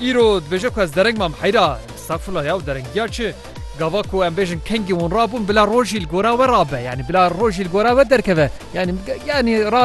Îro dibêje ku ez dereng mam heyra estağfurullah ya derengiya çi? Gava ku em bêjin kengî hûn rabûn bila rojî li gora we rabe yanî bila rojî li gora we derkeve yanî yanî ra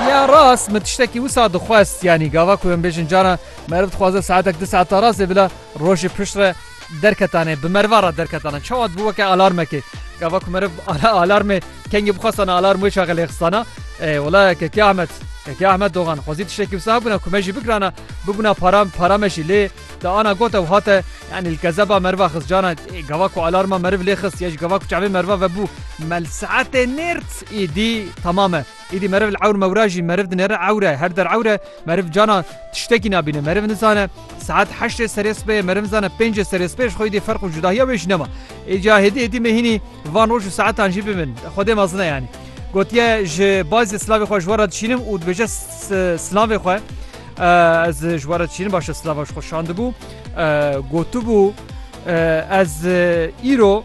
ya rast min tiştekî wisa dixwest yanî gava ku em bêjin cana meriv dixwaze saetek di saeta rastê bila rojî pişt re Derketane, bi meriva re derketane. Çawa dibû weke alarmekê. Gava ku meriv ala alarmê kengî bixwestana alarm wê çaxê lêxistana. Ê wala Kekî Ahmet, Kekî Ahmet Dogan xwezî tiştekî wisa hebûna ku me jî bigirana, bibûna para, para me jî lê te ana gote û hate yanî li kezeba meriva xist cana. Ê gava ku alarma meriv lêxist ya jî gava ku çavê meriva vebû mel saetê nêrd êdî temam e. Îdî meriv li ewr mewra jî meriv dinêre ewr e, her der ewr e, meriv cana tiştekî nabîne, meriv nizane saet heştê serê sibehê meriv nizane pêncê serê sibehê ji xwe îdî ferq û cudahiya wê jî nema. Îca hêdî hêdî me hînî van roj û saetan jî bibin, Xwedê mezin e yanî. Gotiye ji bazê silavê xwe ji we re dişînim û dibêje silavê xwe ez ji we re dişînim baş e silava ji xwe şandibû, gotibû ez îro,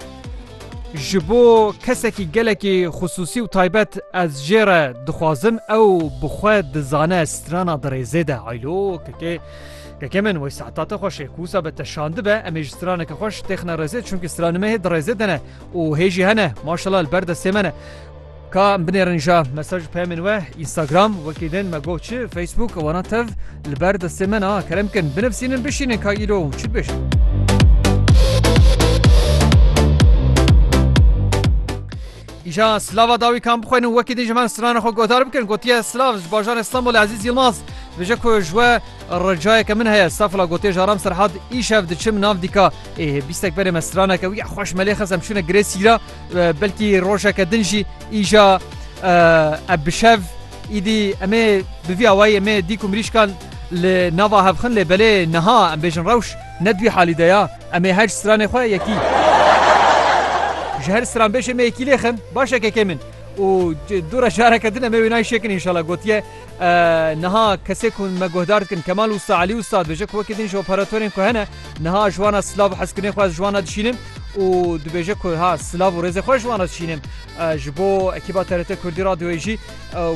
Ji bo kesekî gelekî xisûsî û taybet ez jê re dixwazim ew bi xwe dizane strana dirêzê de aylo kekê Kekê min wey saeta te xweş ê ku wisa be te şandibe em ê ji straneke xweş têxine rêzê çunkî stranimehê dirêzê de ne û hê jî hene maşela li ber destê me ne. Ka em binêrin ja mesaj û peyamên we Instagram wekî din me got çi Facebook wana tev li ber destê me na kerem bikin binivsînin bişînin ka îro çi dibêjin. Îja slava dawî kam bixwên û wekî din ji me strana xwe guhdar bikin gotiye slav ji bajar İstanbul Aziz Yılmaz bije ku ji we ricayeke min heye safla gotiye jaram serhat îşev diçim nav dîka ê bîstek berê me straneke wî xweş melê xesem şûne girê sîra Belkî rojeke din jî îja ev bi şev îdî emê bi vî awayî emê dîk û mirîşkan li nava hev xin lê belê niha em bêjin rewş ne di wî halî de ya. Em ê her ji stranê xwe yekî ji her stranbêjê me yekî lê xin. Baş e kekê min û dûre careke din em ê wê nayê şêkin înşala gotiye. Niha kesê ku me guhdar dikin Kemal Usta Elî Usta dibêje ku wekî din ji operatorên ku hene niha ji wana silav û hezkirinê xwe ez ji wana dişînim û dibêje ku ha silav û rêzê xwe ji wana dişînim. Ji bo ekîba TRT Kurdî Radyoyê jî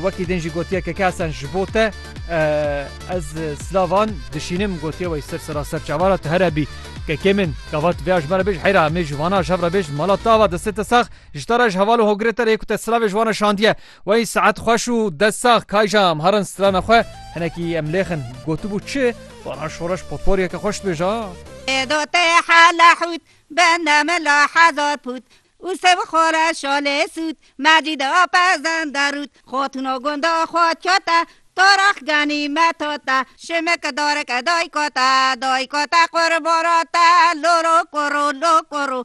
wekî din jî gotiye Keke Hesen ji bo te ez silavan dişînim gotiye wey ser sera ser çavana tu here bî Kekê min gava tu vêya ji me re bêj heyra em ê ji vana ji hev re bêjin mala te ava destê te sax ji te re ji heval û hogirê te re yê ku te silavê ji wana şandiye Wey saet xweş û dest sax Kayja em herin strana xwe hinekî em lêxin gotibû çi vana şoreş potporyeke xweş dibêja. Êdo te hela hût bende mela hezar pût û sev xore şalê sût Mecîd a pezende rût Xatûna gonda xwe kete to rex genîme to te Şimik dareke dayika te dayika te qurbana te Loro koro lo koro